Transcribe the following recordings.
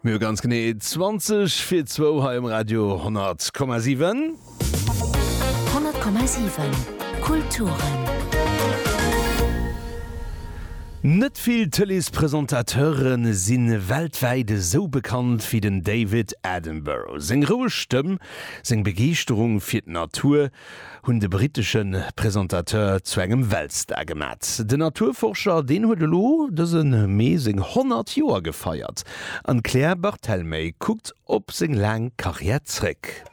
Mir hu ganz genee 20 fir zwou hei um Radio 10,7. 10,7 Kulturen. Net vill Tëleespresentateure si weltwäit esou bekannt wéi den David Attenborough. Seng roueg Stëmm, seng Begeeschterung fir d'Natur, hunn de brittesche Presentateur zu engem Weltstar gemat. Den Naturforscher, deen huet elo dëse Mee seng 100 Joer gefeiert an d'Claire Barthelmey kuckt op seng laang Karriär zréck.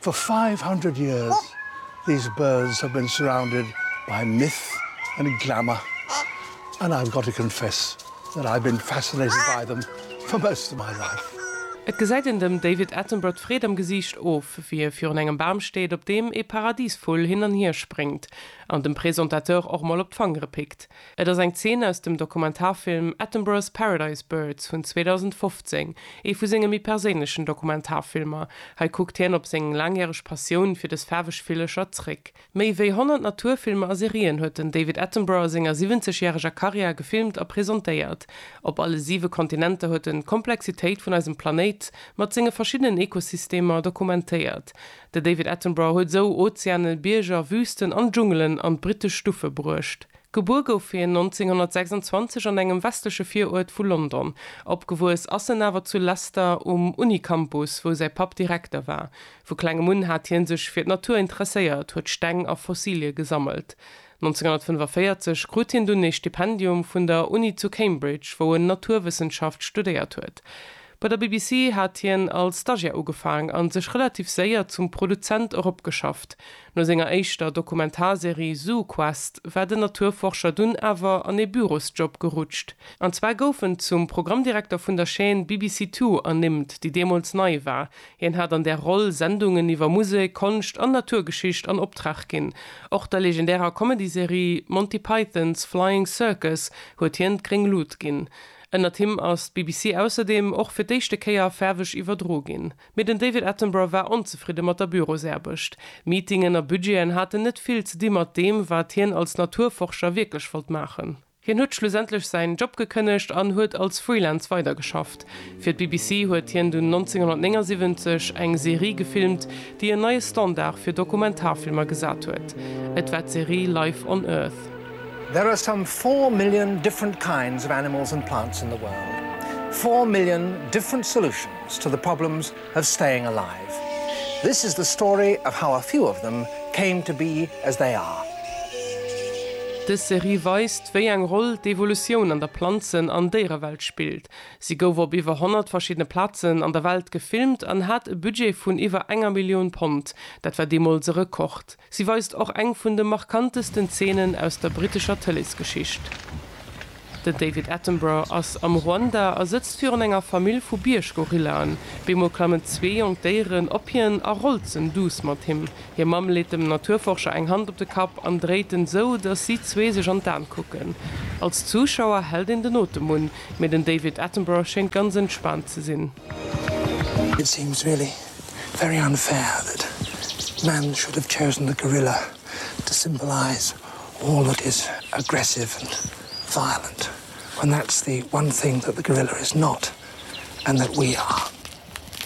For five hundred years these birds have been surrounded by myth and glamour and I've got to confess Well I been fascinated by them for most of my life. Et gesäit een dem David Attenborough d'Freed am Gesiicht of, wéi e virun engem Bam steet, op deem ee Paradisvull hin an hier spréngt an dem Presentateur och mol op d'Fangere pickt. Et ass eng Zeen aus dem Dokumentarfilm Attenborough's Paradise Birds vun 2015, ee vu senge méi perséinlechen Dokumentarfilmer. Hei kuckt hien op seng laangjäreg Passioun fir dës faarweg Villecher zréck. Méi wéi 100 Naturfilmer a Serien huet den David Attenborough a senger 70 järeger Karriär gefilmt a presentéiert. Op alle siwe Kontinenter huet en d'Komplexitéit vun eisem Planéit mat senge verschiddenen Ekosystemer dokumentéiert. De David Attenborough huet esou Ozeanen, Bierger, Wüsten an Dschungelen an d'brittesch Stuffe bruecht. Gebuer gouf hien 1926 an engem westleche Viruert vu London. Opgewuess ass en awer zu Leicester um Uni-Campus, wou säi Papp Direkter war. Vu klengem un hat hie sech fir d'Natur interesséiert, huet Steng a Fossilie gesammelt. 1945 krut hien dunn ee Stipendium vun der Uni zu Cambridge, wou en Naturwëssenschaft studéiert huet. Bei der BBC hat hien als Stagiär ugefaang a sech relativ séier zum Produzent eropgeschafft. No senger éischter Dokumentarserie ZooQuest war den Naturforscher dunn awer an ee Bürosjob gerutscht. An zwar gouf en zum Programmdirekter vun der Chaîne BBC Two ernimmt, déi deemools nei war, Hien hat an där Roll Sendungen iwwer Musek, Konscht an Naturgeschicht an Optrag ginn. Och der legendärer Comedy-Serie Monty Python's Flying Circus huet hien d'gréng Lut ginn. Ënnert him ass d'BBC ausserdeem och fir d'éischte Kéier faarweg iwwerdro ginn. Mee den David Attenborough war onzefridde mat der Bürosaarbecht. Meetingen a Budgeten haten net vill ze di mat deem, wat hien als Naturforscher wierklech wollt maachen. Hien huet schlussendlech säin Job gekënnegt an huet als Freelance weidergeschafft. Fir d'BBC huet hien dunn 1979 eng Serie gefilmt, déi en neie Standard fir Dokumentarfilmer gesat huet. Et war d'Serie Life on Earth. There are some four million different kinds of animals and plants in the world. Four million different solutions to the problems of staying alive. This is the story of how a few of them came to be as they are. Dës Serie weist, wéi eng Roll d'Evolutioun an der Planzen an Déierewelt spillt. Si gouf op iwwer 100 verschiddene Plazen an der Welt gefilmt an hat e Budget vun iwwer enger Millioun Pond, dat war deemools e Rekord. Si weist och eng vun de markantesten Zeenen aus der brittescher Tëleesgeschicht. Den David Attenborough ass am Ruanda a sëtzt virun enger Famill vu Bierggorillaen. Beemol klammen zwee jonk Déieren op hien a rolzen duuss mat him. Hir Mamm leet dem Naturforscher eng Hand op de Kapp an dréit en sou, dass si zwee sech an d'An kucken. Als Zuschauer hält een den Otem un, mee den David Attenborough schéngt ganz entspaant ze sinn. It seems really very unfair that man should have chosen the gorilla to symbolise all that is aggressive and violent when that's the one thing that the gorilla is not and that we are.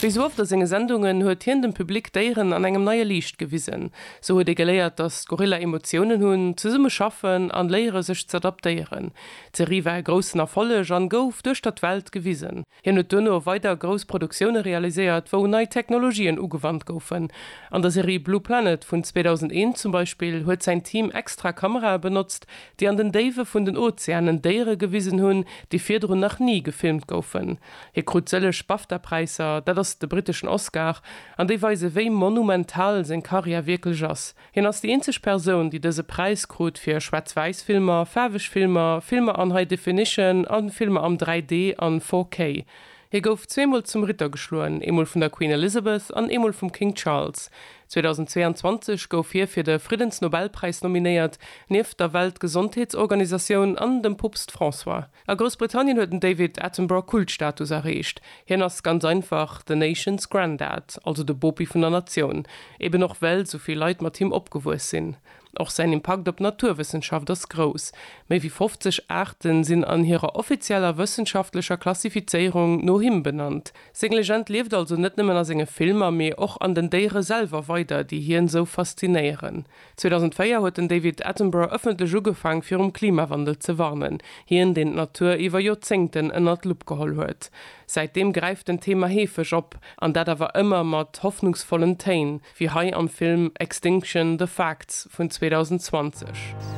Wéi sou oft a senge Sendungen huet hien dem Public d'Déieren an engem neie Liicht gewisen. Sou huet ee geléiert, datt d'Gorilla Emotiounen hunn, zesumme schaffen an léiere sech z'adaptéieren. D'Serie war e groussen Erfolleg an gouf duerch der d'Welt gewisen. Hien huet duerno weider grouss Produktioune realiséiert, wou nei Technologien ugewannt goufen. An der Serie Blue Planet vun 2001 zum Beispill huet säin Team extra Kamerae benotzt, déi an den Déiwe vun den Ozeanen Déiere gewisen hunn, déi virdrun nach ni gefilmt goufen. Hie krut sëlleg BAFTA-Präisser, dat ass de britteschen Oscar, an déi weise wéi monumental seng Karriär wierklech ass. Hien ass déi eenzeg Persoun, déi dëse Präis krut fir Schwaarz-Wäiss-Filmer, faarweg Filmer, Filmer an High Definition a Filmer am 3D an 4K. Hie gouf zweemol zum Ritter geschloen, eemol vun der Queen Elizabeth an eemol vum King Charles. 2022 gouf hie fir de Friddensnobelpräis nominéiert, nieft der Weltgesondheetsorganisatioun an dem Poopst François. A Groussbritannien huet den David Attenborough Kultstatus erreecht. Hien ass ganz einfach the nation's granddad, also de Bopi vun der Natioun, eben och well esou vill Leit mat him opgewuess sinn. Och säin Impakt op d'Naturwëssenschaft ass grouss, méi wéi 50 Aarten sinn an hirer offizieller wëssenschaftlecher Klassifizéierung no him benannt. Seng Legend lieft also net nëmmen a senge Filmer, mee och an den Déiere selwer weider, déi hien esou faszinéieren. 2004 huet den David Attenborough ëffentlech ugefaang fir um Klimawandel ze warnen, hien deen d'Natur iwwer Joerzéngten ënnert d'Lupp geholl huet. Säitdeem gräift den Thema heefeg op, an dat awer ëmmer mat hoffnungsvollen Téin, wéi hei am Film Extinction, The Facts vun 2020.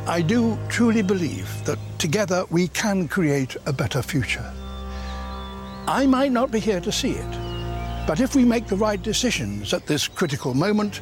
I do truly believe that together we can create a better future. I might not be here to see it, but if we make the right decisions at this critical moment,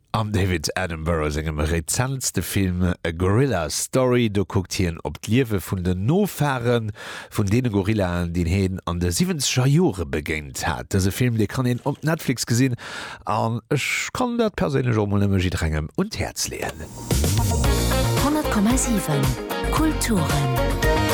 Am David Attenborough sengem rezentste Film A Gorilla Story, do kuckt hien op d'Liewe vun den Nofahre vun deene Gorillaen, deen hien an de siwwenzeger Jore begéint hat. Dëse Film, dee kann een op Netflix gesinn an ech kann dat perséinlech och mol nëmme jidderengem un d'Häerz leeën. 100,7 Kulturen